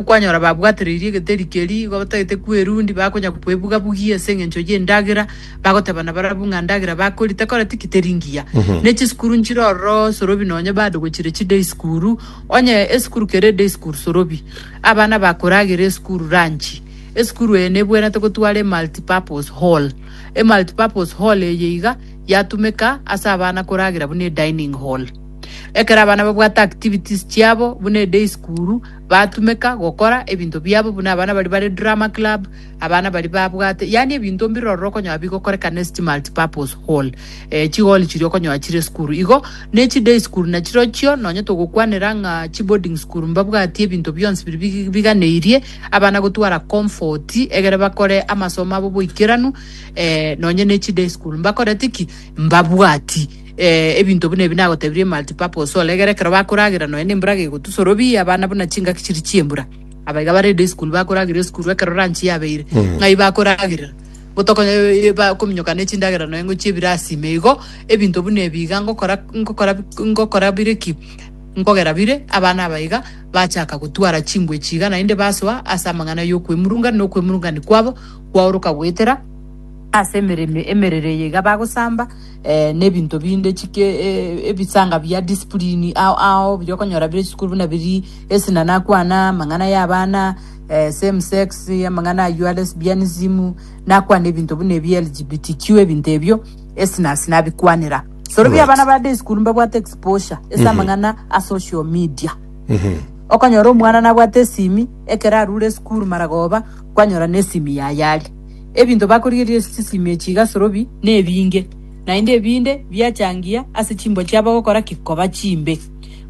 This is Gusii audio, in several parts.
Okwanyora babwatoreirie egeteri keria igo batagete kwerundia, bakonya kwebuga-bugia ase engencho y'endagera, bagotebana barabwo ng'a ndagera bakori tekora tiki teri ngiya. Ne chisukuru nchire ororo sorobi nonye bado gochire chiday sukuru, onye esukuru kere eday sukuru sorobi. Abana bakoragera esukuru ranchi. Esukuru eye nebwenerete gotwara emulti-purpose hall. Emulti-purpose hall eye iga yatumeka ase abana koragera buna edining hall. Ekero abana babwate activities chiabo buna eday sukuru, Batumeka gokora ebinto biabo buna abana baria bare drama club, abana baria babwate yaani ebinto mbire ororo okonyora bigokorekana ase chi multipurpose hall, eh, chigool chiria okonyora chire esukuru igo, ne chi day school nachirochio nonye togokwanera ng'a chi boarding school mbabwatie ebinto bionsi biria big biganeirie abana gotwara comfort egere bakore amasomo abo boikeranu, eh, nonye ne chi day school mbakoreti ki? mbabwati. Ee, ebinto buna ebi nagotebirie multipurpose oregere ekero bakoragera nonya nembura gegotusoro bi abana buna chingaki chiri chiembura abaiga bare day school bakorageria esukuru ekero ranchi yabeire ng'ai bakoragerera gotokonya eh, ba- kominyoka ne chindagera nonya ng'o chiebirasi ime igo ebinto buna ebi iga ngokora ngokora ngokora bire ki nkogera bire abana abaiga bachaka gotwara chingwe echi iga naende basoa ase amang'ana ya okwemurunga na okwemurungani kwabo kwaoroka goetera ase emereme emerero eye iga bagosamba eh, nebinto binde chike eh, ebisanga bia discipline ao ao biri okonyora bire chisukuru buna biri esinana kwana amang'ana ya abana eh, same sex amang'ana ayua lesbianism nakwana ebinto buna ebi LGBTQ ebinto ebio esinasi nabikwanera soro bia Right. abana ba day school mbabwate exposure ese amang'ana a social media okonyora omwana nabwate esimi ekero arure esukuru maragoba kwanyora nesimi yayari Ebinto bakorigereria ase chisimi echi iga asorobi nebinge, naende ebinde biachangia ase chimboa chiabo gokora ki? Koba chimbe.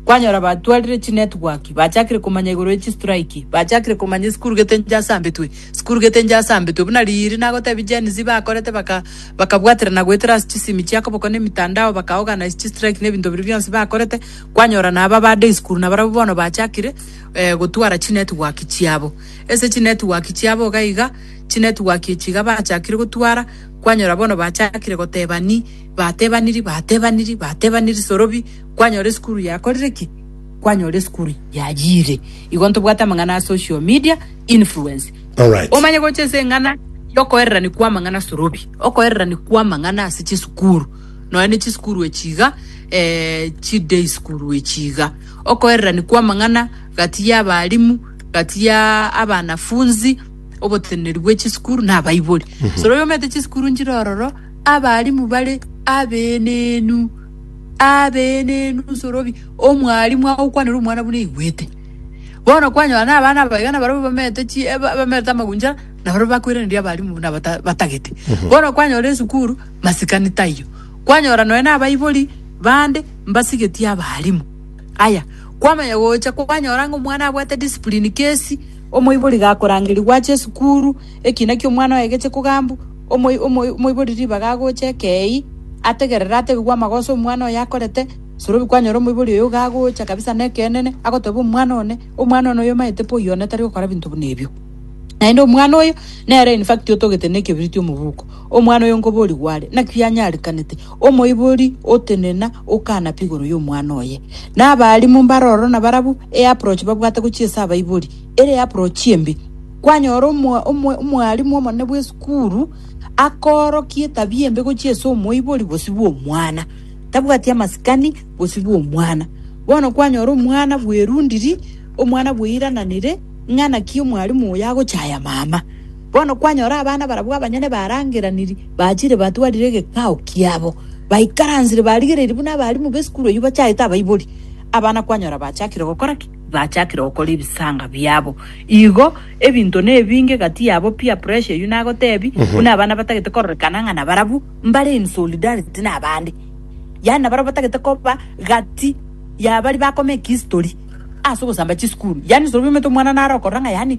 Kwanyora batwarire chinetwork, bachakire komanya igoro ye chistrike, bachakire komanya esukuru gete enche asambetwe, esukuru gete enche asambetwe. Buna riiri nagotebie Gen Z bakorete baka bakabwaterana goetera ase chisimi chia koboko na emitandao baka organise chistrike na ebinto biria bionsi bakorete, kwanyora naba ba day school nabarabwo bono bachakire gotwara chinetwork chiabo. Ase chinetwork chiabo iga iga, chinetwork echi iga bachakire gotwara, kwanyora bono bachakire gotebani, batebaniri, batebaniri, batebaniri sorobi, kwanyora esukuru yakorire ki? Kwanyora esukuru yayiire. Igo ntobwate amang'ana a social media influence. Alright. Omanye gocha ase eng'ana yokoererani kwamang'ana sorobi, okoererani kwamang'ana ase chisukuru, nonya ne chisukuru echi iga, eh, chi day school echi iga, okoererani kwamang'ana gati y'abalimu, gati ya abanafunzi, oboteneneri bwe chisukuru na abaibori. Soro oyomete chisukuru nchire ororo, abarimu bare abenenu, abenenu soro bi- omwarimu agokwanera omwana buna aigwete. Bono kwanyora na abana aba iga nabarabwo bamete chi eh, ba- bamete amaguncha, nabarabwo bakoiraneria abarimu buna bata- batagete. Bono kwanyora esukuru, masikani taiyo. Kwanyora nonya na abaibori bande, mbasigetie abarimu. Aya, kwamanya gocha kwanyora ng'a omwana abwate discipline kesi. Omoibori gakorangeria gwacha esukuru, ekina ki'omwana oye geche kogambu, omoi omoi omoibori ribaga agoche ekei, ategerere atebigwe amagoso omwana oye akorete, sorobi kwanyora omoibori oyo iga agocha kabisa neke'enene, agoteba omwana one, omwana one oyo omaete po oyio one tari gokora binto buna ebio. Naende omwana oyo, nere in fact otogete nekebiriti omobuko, omwana oyo nkoborigwe are, naki yanyarikanete. Omoibori otenena okana pigoro y'omwana oye. Na abalimu mbare ororo na barabwo e approach babwate gochia ase abaibori, ere approach embe. Kwanyora omo omo omwalimu omonene bw'esukuru akoorokia etabia embe gochia ase omoibori bosio bw'omwana. Tabwati amasikani bosio bw'omwana. Bono kwanyora omwana bwerundiri, omwana bweirananire ng'a naki omwalimu oyo agochaya mama. Bono kwanyora abana barabwo abanyene barangeraniri, bachire batwarire egekao kiabo, baikaransire barigereirie buna abarimu b'esukuru eyio bachaete abaibori. Abana kwanyora bachakire gokora ki? Bachakire gokora ebisaanga biabo. Igo ebinto nebinge gati yabo, peer pressure eyio nagotebi, buna abana batagete kororekana ng'a nabarabwo mbare in solidarity nabande. Yaani nabarabwo batagete koba gati yabaria bakoma ekihistori ase ogosamba chisukuru. Yaani sorobia omanyete omwana naro okorora ng'a yaani.